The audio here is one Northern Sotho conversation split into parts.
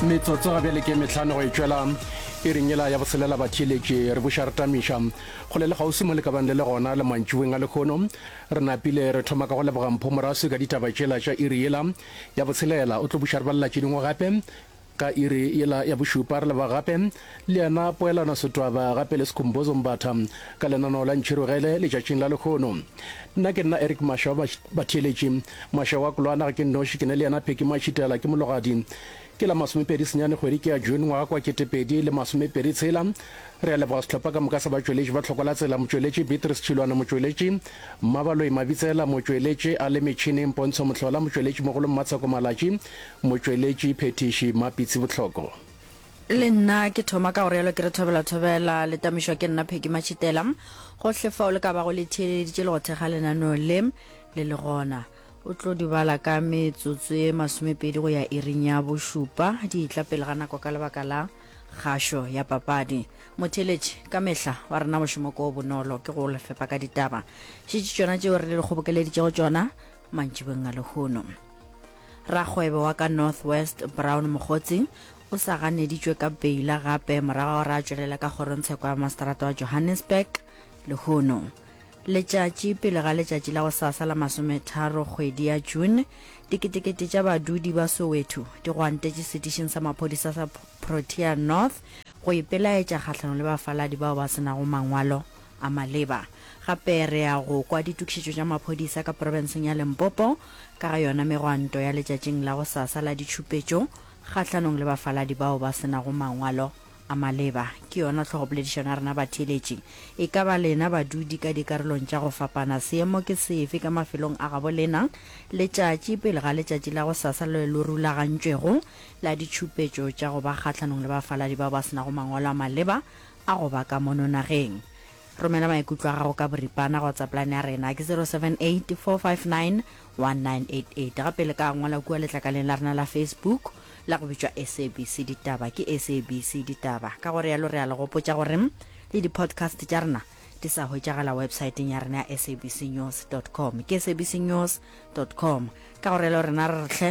metsotso ga bjale ke metlhano go e tšwela e ringela ya boselela batšheletše re buša re tamiša go le le gausi mo le ka bang le le gona le mantšiweng a lekgono re napile re thoma ka go leboga mpho moraswi ka ditaba tšela tša iri yela ya boselela o tlo buša re balela tše dingwe gape ka iri yela ya bošupa re leboga gape le yena Poelano Sitwaba, gape le Skhumbuzo Mbatha, ka lenaneo la Ntšhirogele letšatšing la lehono. Nna ke nna Eric Masha wa batheeletši. Masha wa Kulwana ga ke nnoši, ke ne le yena Phecky Matšhitela, ke mologadi. Ke la masomepedi senyane kgwedi ke ya June ngwaga kwa ketepedi le masomepedi tshela. Re a leboga sehlopha ka moka sa batšweletši ba Tlhoko la Tsela, motšweletši Beatrice Tšhilwane, motšweletši Mmabaloi Mabitsela, motšweletši a le metšhineng Pontsho Mohlola, motšweletši mogolo Mmatsheko Malatši, motšweletši phethiši Mmapitsi Bohloko. Le nna ke thoma ka go realo ke re thobela thobela, le tamišwa ke nna Peggy Matšhitela. Gohle fao le ka bago le theeleditše le go thekga lenaneo le, le le gona. O tlo di bala ka metsotso ye masomepedi go ya iring ya bošupa, di etla pele ga nako ka lebaka la kgašo ya papadi. Motheeletši, ka mehla, wa rena mošomo ko o bonolo, ke go le fepa ka ditaba. Šetše tšona tšeo re le kgobokeleditšego tšona, mantšibeng a lehono rakgwebo wa ka north west brown mogotsi o sa ganeditšwe ka beila gape morago gore a tšwelela ka kgorongtsheko ya masterata wa johannesburg lehono letšatši pele ga letšatši la go sasa la masometharo kgwedi ya june diketekete tša badudi ba soweto di gwantetše setišeng sa maphodisa sa protea north go ipelaetša kgahlano le bafaladi bao ba senago mangwalo a maleba. Gape re ya go kwa ditokišetšo tša maphodisa ka profenseng ya Limpopo ka ga yona megwanto ya letšatšing la go sasa la ditšhupetšo kgahlanong le bafaladi bao ba se nago mangwalo a maleba. Ke yona tlhogopoledišano ya rena batheeletši. E ka ba lena badudi ka dikarolong tša go fapana seemo ke sefe ka mafelong a gabo lena letšatši pele ga letšatši la go sasa le lo rulagantšwego la ditšhupetšo tša go ba kgahlanong le bafaladi bao ba se nago mangwalo a maleba a go ba ka mono nageng. Romela maikutlo a gago ka boripana go WhatsAppline ya rena ke 078 459 1988 gape le ka ngwala kua letlakaleng la rena la Facebook la go bitšwa SABC Ditaba ke SABC Ditaba ka gore yalo re a le gopotša gore le di-podcast tša rena di sa hwetšagala websaeteng ya rena ya sabcnews com ke sabcnews com ka gore yalo rena re re tlhe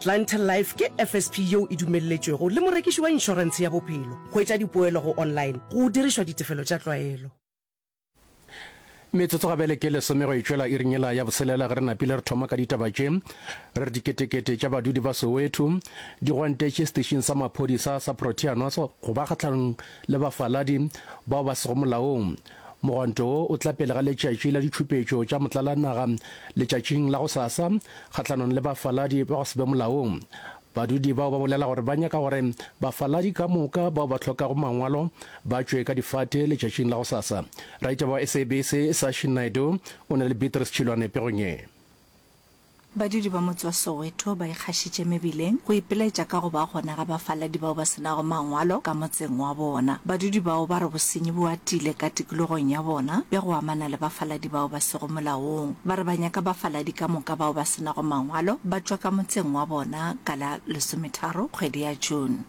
Clientele Life ke FSP yeo e dumelletšwego le morekiši wa inšorentshe ya bophelo go etša dipoelo go online go dirišwa ditefelo tša tlwaelo. Metsotso gabele ke lesome go e tšwela iring yela ya boselela ge re napile re thoma ka ditaba tše re re diketekete tša badudi ba Soweto di gwantetše setešing sa maphodisa sa Proteanos go ba kgahlanong le bafaladi bao ba sego molaong Mogwanto wo o tla pele ga letšatši la ditšhupetšo tša motlalanaga letšatšing la gosasa kgahlanong le bafaladi ba go se be molaong. Badudi bao ba bolela gore ba nyaka gore bafaladi ka moka bao ba hlokago mangwalo ba tšwe ka difate letšatšing la gosasa. Raditaba wa SABC Sashi Naidoo o na le Beatrice Chilwane pegong ye. Badudi ba motse wa Soweto ba ikgašitše mebileng go ipiletša ka go ba gona ga bafaladi bao ba se nago mangwalo ka motseng wa bona. Badudi bao ba re bosenyi bo atile ka tikologong ya bona bja go amana le bafaladi bao ba sego molaong. Ba re ba nyaka bafaladi ka moka bao ba se nago mangwalo ba tšwa ka motseng wa bona ka la lesometharo kgwedi ya June.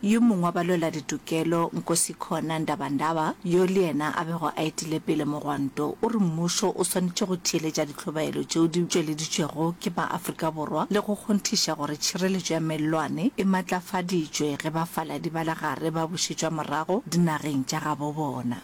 Yo mongwe wa balweladitokelo, Nkosikhona Ndabandaba, yo le yena a bego a etile pele mogwanto, o re mmušo o swanetše go theeletša ditlhobaelo tšeo di tšweleditšwego ke maAfrika Borwa le go kgonthiša gore tšhireletšo ya mellwane e maatlafaditšwe ge bafaladi ba legare ba bušetšwa morago dinageng tša gabobona.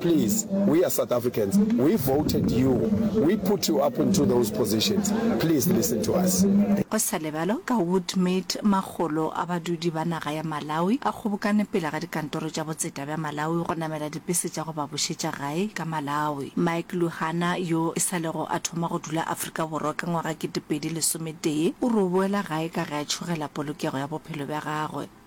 Please we are South Africans we voted you we put you up into those positions please listen to us. Go sa lebalwe ka Woodmead makgolo a badudi ba naga ya Malawi a kgobokane pele ga dikantoro tša botseta bja Malawi go namela dipese tša go ba bušetša gae ka Malawi. Mike Luhana yo e sa lego a thoma go dula Afrika Borwa ka ngwaga kete pedi lesometee o re o boela gae ka ge a tšhogela polokego ya bophelo bja gagwe.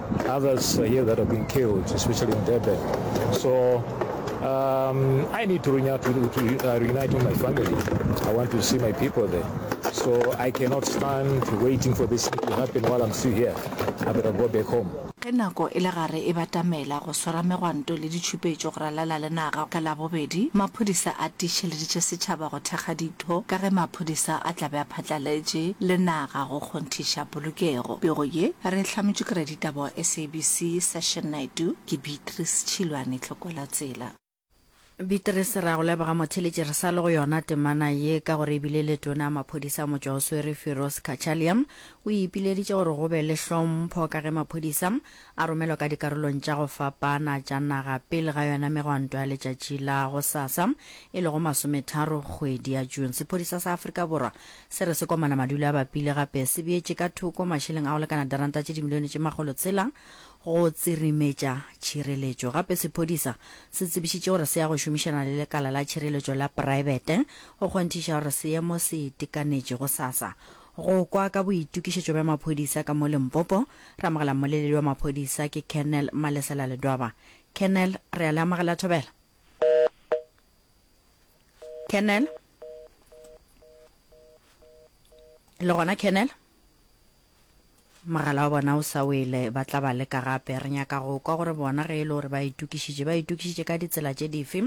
Others here that have been killed, especially in Durban. So um, I need to reunite, to, to, uh, reunite with my family. I want to see my people there. So I cannot stand waiting for this to happen while I'm still here. I better go back home. ge nako e le gare e batamela go swara megwanto le ditšhupetšo go ralala le naga ka labobedi maphodisa a tiišeleditše setšhaba go thekga ditho ka ge maphodisa a tlabe a phatlaletše le naga go kgonthiša Polokego. Pego ye re e hlametšwe ke raditaba wa SABC Session Naidoo, ke Beatrice Tšhilwane Tlhokwelatsela. Beatrice, re a go leboga motheletši, re sa le go yona temana ye ka gore e bile le tona maphodisa a motšwa o swere Firoz Cachalia o e ipileditše gore go be le hlompho ka ge maphodisa a romelwa ka dikarolong tša go fapana tša naga pele ga yona megwanto ya letšatši la gosasa e lego masometharo kgwedi ya June. Sephodisa sa Afrika Borwa Se re sekomana madulo a bapile gape se beetše ka thoko mašeleng a go lekana diranta tše dimilione tše makgolo tshela go tsirimetša tšhireletšo. Gape sephodisa se tsebišitše gore se ya go šomišana le lekala la tšhireletšo la praebete go kgonthiša gore seemo se itekanetše. Gosasa go kwa ka boitokišetšo bja maphodisa ka mo Limpopo, re amogela mmoleledi wa maphodisa ke Colonel Malesela Ledwaba. Colonel, re a le amogela thobela. Colonel. le gona kennel mogala wa bona o sa wele ba tla ba leka gape re nyaka go kwa gore bona ge e le gore ba itokišitše ba itokišitše ka ditsela tše dife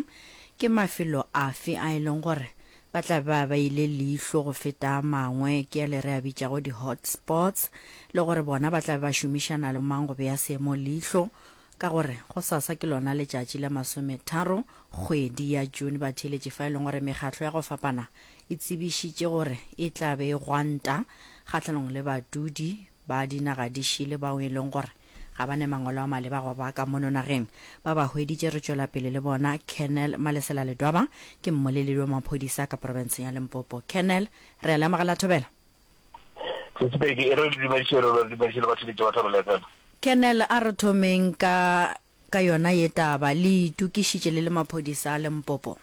ke mafelo afe a e leng gore ba tla ba ba ile leihlo go feta a mangwe ke ya le re a bitšago di-hotspots le gore bona ba tla ba šomišana le mang go beya seemo leihlo Ka gore gosasa ke lona letšatši la masometharo kgwedi ya June, batheeletši fa e leng gore mekgatlo ya go fapana e tsebišitše gore e tla be e gwanta kgahlanong le badudi ba dinaga di šele bao e leng gore ga ba ne mangwalo a maleba go ba ka mono nageng. Ba ba hweditše re tšwela pele le bona, Colonel Malesela Ledwaba ke mmoleledi wa maphodisa ka profenseng ya Limpopo. Colonel, re a le amogela thobela. Se Sepedi, e re le dumediše rena, le dumediše le batho le Jehofa re letela. Colonel, a re thomeng ka ka yona ye taba. Le itokišitše le le maphodisa a Limpopo?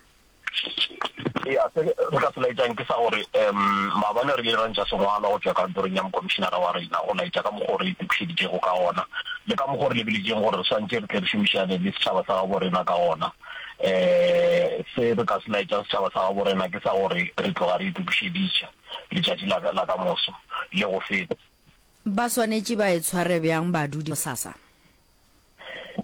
Eya, se re ka se laetšang ke sa gore um maabane re ile ra ntša sengwalwa go tšwa kantorong ya mokomišinara wa rena go laetša ka mokgwa o re itokišeditšego ka wona le ka mokgwa o re lebeletšeng gore re swantše re tle re šomišane le setšhaba sa gabo rena ka wona. Um se re ka se laetšang setšhaba sa gabo rena ke sa gore re tloga re itokišeditše. letšatši la ka, la ka moso le go feta. Ba swanetše ba e tshware bjang badudi bosasa?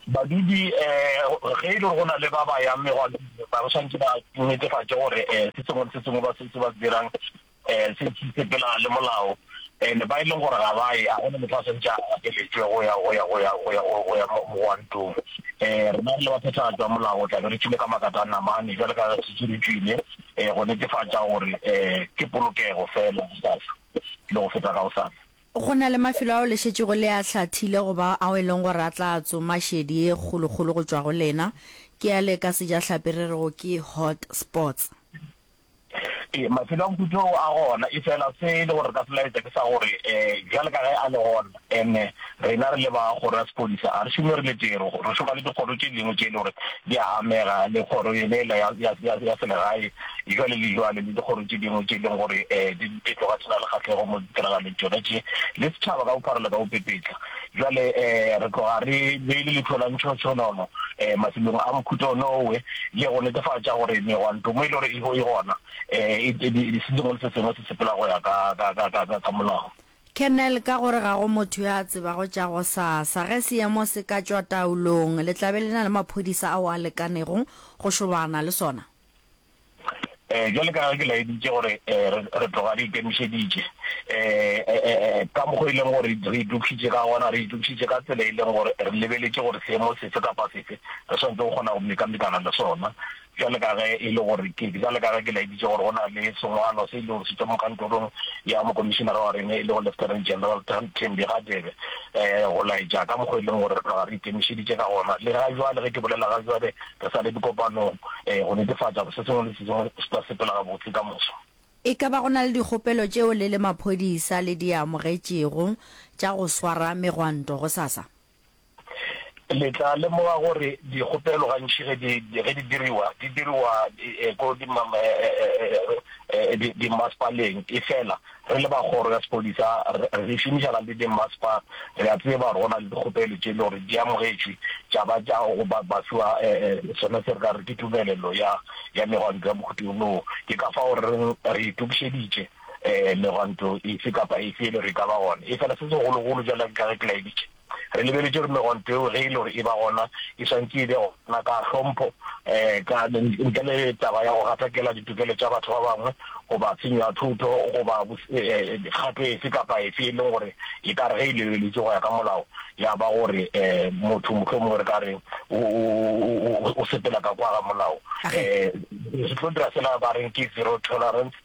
Badudi, um ge e le gore go na le ba ba yang merwalong, ba swanetše ba netefatše gore um se sengwe le se sengwe ba se, se ba se dirang um se, se sepelelana le molao. And ba e leng gore ga ba ye, ga go na motho a swanetše a gapeletšwe go ya, go ya, go ya, go ya, go ya mogwantong. Um rena re le baphethagatši ba molao re tla be re tšwile ka makatana mane, bjalo ka ge re šetše re tšwile. eh, go netefatša gore eh, ke polokego fela sasa le go feta gaosasa. Go na le mafelo ao le šetšego le a hlathile goba ao e leng gore a tla tsoma šedi e kgolokgolo go tšwa go lena, ke a le ka sejahlapi re rego ke hot spots. E, mafelo a mputo a gona e fela se e le gore ka selaetsa ke sa gore um eh, jale ka ge a le gona Ene rena re le ba Kgoro ya Sepodisa ga re šome re le tee, re re šoma le dikgoro tše dingwe tše e le gore di a amega le kgoro yone ela ya, ya, ya, ya selegae bjale le bjale, le dikgoro tše dingwe tše e leng gore um di, di tloga di se na le kgahlego mo ditiragalong tšona tše, le setšhaba ka bophara le ka bopepetla. Bjale um re tloga re beile leihlo la ntšhotshonono um mafelong a mohuta wone owe, le go netefatša gore megwantomo e le gore e, e gona um e, e, e, e se sengwe le se sengwe se sepela go ya ka, ka, ka, ka, ka, ka molao. Colonel, ka gore ga go motho yo a tsebago tša gosasa. Ge seemo se ka tšwa taolong, le tla be le na le maphodisa ao a lekanego go šobana le sona? Ee, bjale ka ge ke laeditše gore re tloga re ikemišeditše ka mokgwa o e leng gore re itokišitše ka gona, re itokišitše ka tsela e leng gore re lebeletše gore seemo sefe kapa sefe re swanetše go kgona go mekamekana le sona. Bjale ka ge e le gore ke, bjale ka ge ke laeditše gore go na le sengwalo se e lego se tšwa mo kantorong ya Mokomišinara wa rena e lego Lieutenant General Thembi Radebe, um go laetša ka mokgo e leng gore re tloga re ikemišeditše ka gona, le ga bjale, ge ke bolela ga bjale, re sa le dikopanong, um go netefatša gore se sengwe le se sengwe se tla sepela gabotse ka moso. E ka ba go na le dikgopelo tšeo le le maphodisa le di amogetšego tša go swara megwanto gosasa? Le tla lemoga gore dikgopelo gantši ge di ge di diriwa di diriwa ko di ma di di masepaleng. E fela re le ba kgoro ya sepodisa re re šomišana le di maspa re a tseba gore go na le dikgopelo tše e le gore di amogetšwe tša ba tša go ba ba fiwa sona se re ka re ke tumelelo ya ya megwanto ya mokhuto wo. Ke ka fao re reng re itokišeditše. um megwanto efe kapa efe e le gore e ka ba gona. Efela se segologolo, bjalo ka ge ke laeditše, re lebeletše gore megwanto eo ge e le gore e ba gona, e swantše e be gona ka hlompho, um ntle le taba ya go gatakela ditokelo tša batho ba bangwe goba tshenyo ya thotho goba kgato efe kapa efe e leng gore e ka re ge e lebeletšwe go ya ka molao ya ba gore um motho mohlomongwe re ka re o sepela ka kwa ga molao. Um se tlo dira fela ba reng ke zero tolerance.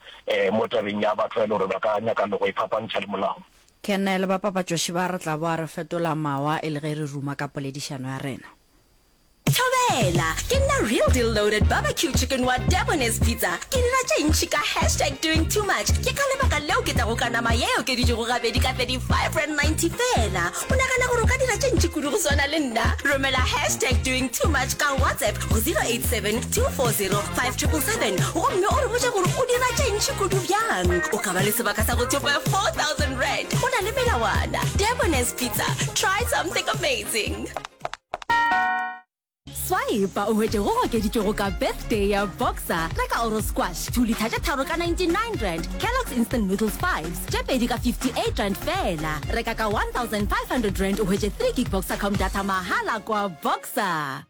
mo tabeng ya batho ba e le gore ba ka nyaka le go iphapantšha le molao. Kernel, Bapapatšoši ba re tla boa re fetola mawa e le ge re ruma ka poledišano ya rena. Thobela! Ke nna Real Deal Loaded Barbecue Chicken wa Debonairs Pizza. Ke dira tše ntši ka hashtag doing too much. Ke ka lebaka leo ke tlago ka nama ye e okeditšwego gabedi ka 35 rand 90 feela. O nagana gore o ka dira tše ntši kudu go swana le nna? Romela hashtag doing too much ka WhatsApp go 0872405777 gomme o re botša gore o dira tše ntši kudu bjang. O ka ba le sebaka sa go thopa 4000 rand. Go na le melawana. Debonairs Pizza. Try something amazing. Swipe o hwetše go okeditšwego ka Birthday ya Boxer, reka Oro Squash, 2 litha tše tharo ka 99 rand, Kellogg's Instant Noodles 5's, tše pedi ka 58 rand feela. Reka ka 1500 rand o hwetše 3 gig Boxercom data mahala kwa Boxer.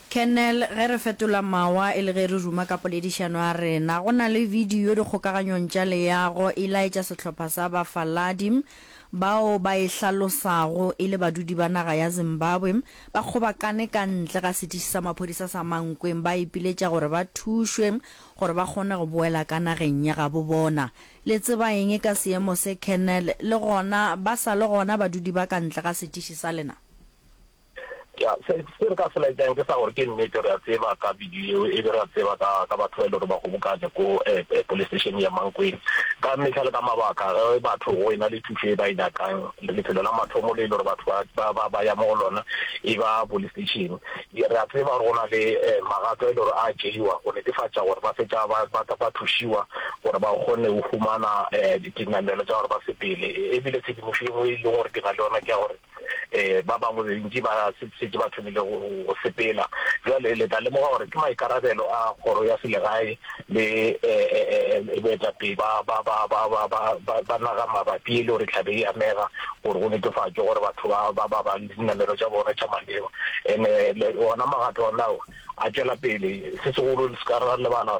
Kernel, ge re fetola mawa e le ge re ruma ka poledišano ya rena. Go na le bidio dikgokaganyong tša leago e laetša sehlopha sa bafaladi. bao ba e hlalosago e le badudi ba naga ya Zimbabwe ba kgobakane ka ntle ga setiši sa maphodisa sa Mankweng ba ipiletša gore ba thušwe gore ba kgone go boela ka nageng ya gabo bona. Le tseba eng ka seemo se Colonel? Le gona ba sa le gona badudi ba ka ntle ga setiši sa lena? Ya, se, se re ka se laetšang ke sa gore ke nnete re a tseba ka video yeo, e be re a tseba ka, ka batho ba e le gore ba kgobokane ko eh, eh, police station ya Mankweng. Ka mehla le ka mabaka, ge batho go ena le thušo e ba e nyakang, le lefelo la mathomo le e le gore batho ba, ba, ba, ba ya mo go lona e ba police station. Ye, re a tseba gore go na le eh, magato a e le gore a tšeiwa go netefatša gore ba fetša ba, ba, ba thušiwa gore ba kgone go humana eh, dinamelo tša gore ba sepele. E bile tshedimošo e nngwe e leng gore ke na le yona ke ya gore um ba bangwe bentši ba šetše ba thomile go sepela. Bjale le tla lemoga gore ke maikarabelo a kgoro ya selegae le um boetapele ba naga mabapi le gore e tlabe e amega gore go netefatšwe gore batho ba ba ba le dinamelwa tša bona tša maleba. And-e ona magato onao a tšwela pele, se segolo le se ka ra lebala gore.